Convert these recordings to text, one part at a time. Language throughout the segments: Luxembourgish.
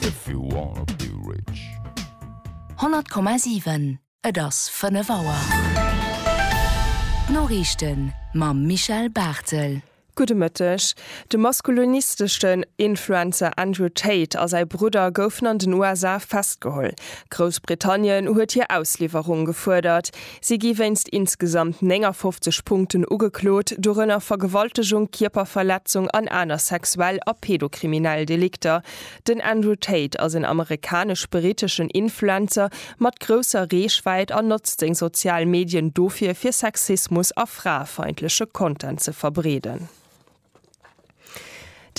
If you wanna be rich. 100,7 Et ass 5 Auer. D'Noriichten mam Michel Barthel. Gudde Mëtteg. De maskulinistesche Influencer Andrew Tate a säi Brudder goufen an den USA festgeholl. Groussbritannien huet hir Ausliwwerung gefuerdert. Si gi wéinst insgesamt 59 Punkten ugeklot, dorënner Vergewaltegung, Kierperverletzung an aner sexuell a pedokriminell Delikter. Den Andrew Tate ass en amerikanesch-briteschen Influencer mat grousser Reechwäit an notzt seng sozial Medien dofir, fir Sexismus a fraefeindleche Content ze verbreeden.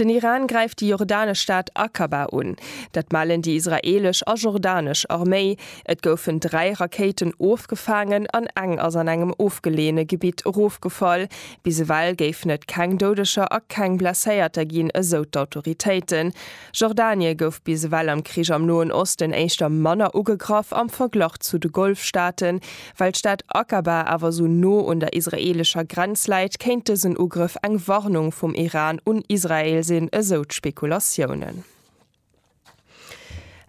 Den Iran gräift déi jordanesch Stad Aqaba un. Dat mellen déi israeelesch a jordanesch Arméi. Et goufen dräi Rakéiten ofgefaangen an eng ass an engem ofgeleeëne Gebitt erofgefall. Bis ewell géifen et keng Doudeger a keng Blesséierter ginn, esou d'Autoritéiten. Jordanie gouf bis ewell am Krich am Noen Osten éischter manner ugegraff am Verglach zu de Golfstaaten. Well d'Stad Aqaba awer esou no un der israeelescher Grenz läit, kéint dësen Ugrëff eng Warnung vum Iran un Israel sinn, esou d'Spekulatiounen.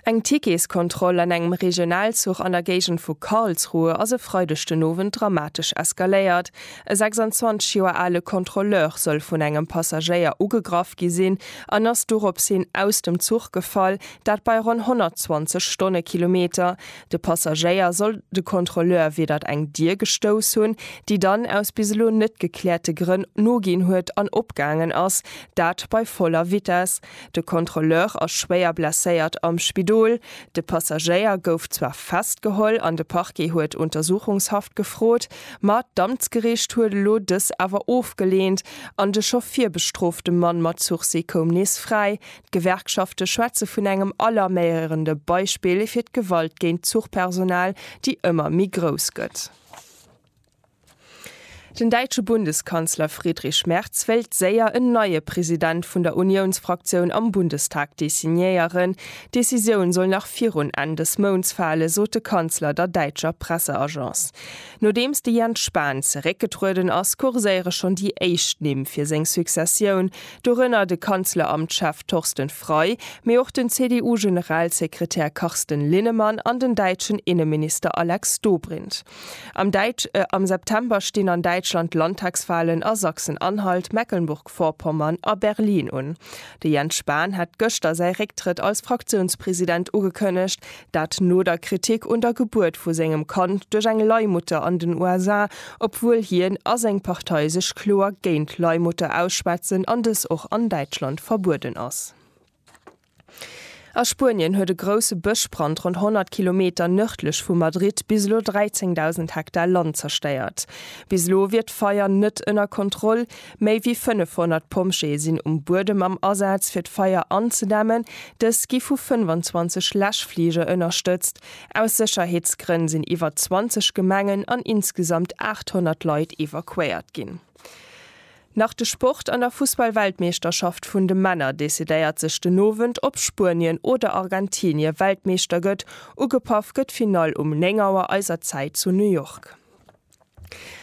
Eng Ticketskontroll an engem Regionalzuch an der Géigend vu Karlsruhe ass e Freideg den Owend dramatesch eskaléiert, E 26 Joer ale Kontrolleur soll vun engem Passagéier ugegraff gi sinn an ass dorops hin aus dem Zuch gefall, dat bei ronn 120 Stonnekilometer. De Passagéier soll de Kontrolleur widert eng Dier gestouss hunn, déi dann aus bis elo net gekläerte Grënn noginn huet an opgaangen ass, dat bei voller Vitess. De Kontrolleur ass schwéier blesséiert am Spidol. De Passagéier gouf zwar festgeholl an de Parquet huet Untersuchungshaft gefrot, ma d'Amtsgeriicht huet elo dës awer ofgeleent an de scho virbestrofte Mann mat Sursis koum nees fräi. D'Gewerkschafte schwätze vun engem alarméierende Beispill fir d'Gewalt géint d'Zuchpersonal, déi ëmmer méi grouss gëtt. Den däitsche Bundeskanzler Friedrich Merz wéilt séier en neie President vun der Uniounsfraktioun am Bundestag designéieren. D'Decisioun soll nach virun Enn des Mounts fale, sot de Kanzler der däitscher Presseagence. Nodeems de Jens Spahn zeréckgetrueden ass, kurséiere schonn déi éischt Nimm fir seng Successioun, dorënner de Kanzleramtschef Torsten Frei, mee och den CDU-Generalsekretär Carsten Linnemann an den däitschen Inneminister Alex Dobrindt. Am Däitsch Am September stinn an Däitschland d'Landtagswahlen a Sachsen-Anhalt, Mecklenburg-Vorpommern a Berlin un. De Jens Spahn hat gëschter säi Récktrëtt als Fraktiounspresident ugekënnegt, dat no der Kritik un der Gebuert vu sengem Kand duerch eng Leihmutter an den USA, obwuel hien a seng Partei sech kloer géint Leihmutter ausschwätzen an dës och an Däitschland verbueden ass. A Spuenien huet e grousse Bëschbrand ronn 100 Kilometer nërdlech vu Madrid bis elo 13.000 Hektar Land zerstéiert. Bis elo wier d'Feier net ënner Kontroll. Méi wéi 500 Pompjeeë sinn um Buedem am Asaz, fir d'Feier anzedämmen. Dës gi vu 25 Läschflige ënnerstëtzt. Aus Sécherheetsgrënn sinn iwwer 20 Gemengen an insgesamt 800 Leit evakuéiert ginn. Nach de Sport, An der Fussball-Weltmeeschterschaft vun de Männer decidéiert sech den Owend, ob Spuenien oder Argentinie Weltmeeschter gëtt. Ugepaff gëtt d'Finall um 9 Auer eiser Zäit zu New York.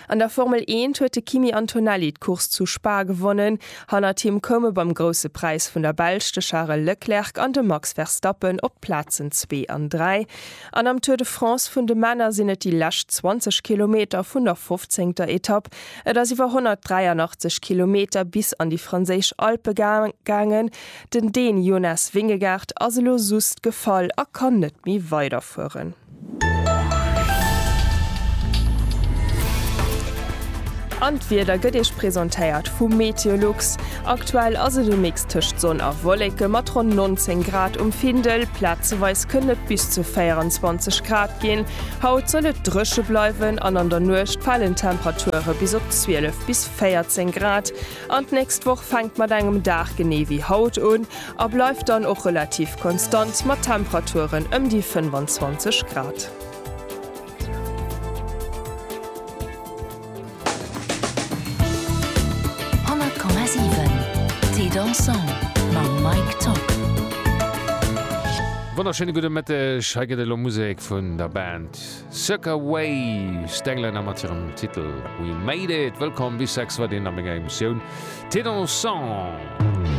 An der Formel Eent huet de Kimi Antonelli d'Course zu Spa gewonnen. Hannert him koume beim Grousse Präis vun der Belsch de Charel Leclerc an de Max Verstappen op d'Plazen zwee an dräi. An am Tour de France vun de Männer sinn et déi lescht 20 Kilometer vun der fofzéngter Etapp. Et ass iwwer 183 Kilometer bis an déi franséisch Alpe gaangen. Den Dän Jonas Vingegaard ass elo sust gefall a kann net méi weiderfueren. An d'Wieder gëtt Iech presentéiert vu Meteolux. Aktuell ass et e Mix tëscht Sonn a Wolleke mat ronn 19 Grad um Findel, plazeweis kënnen et bis zu 24 Grad ginn. Haut soll et dréche bleiwen an an der Nuecht falen d'Temperature bis op 12 bis 14 Grad. An d'nächst Woch fänkt mat engem Dag genee wéi haut un a bleift dann och relativ konstant mat Temperaturen ëm déi 25 Grad. 100,7 Thé dansant mam Mike Top. Wonnerschéine gudde Mëtteg, hei gëtt et elo Musek vun der Band Circa Waves, d'Englänner mat hirem Titel We Made It. Wëllkomm bis 6 Uer, deen a menger Emissioun Thé dansant.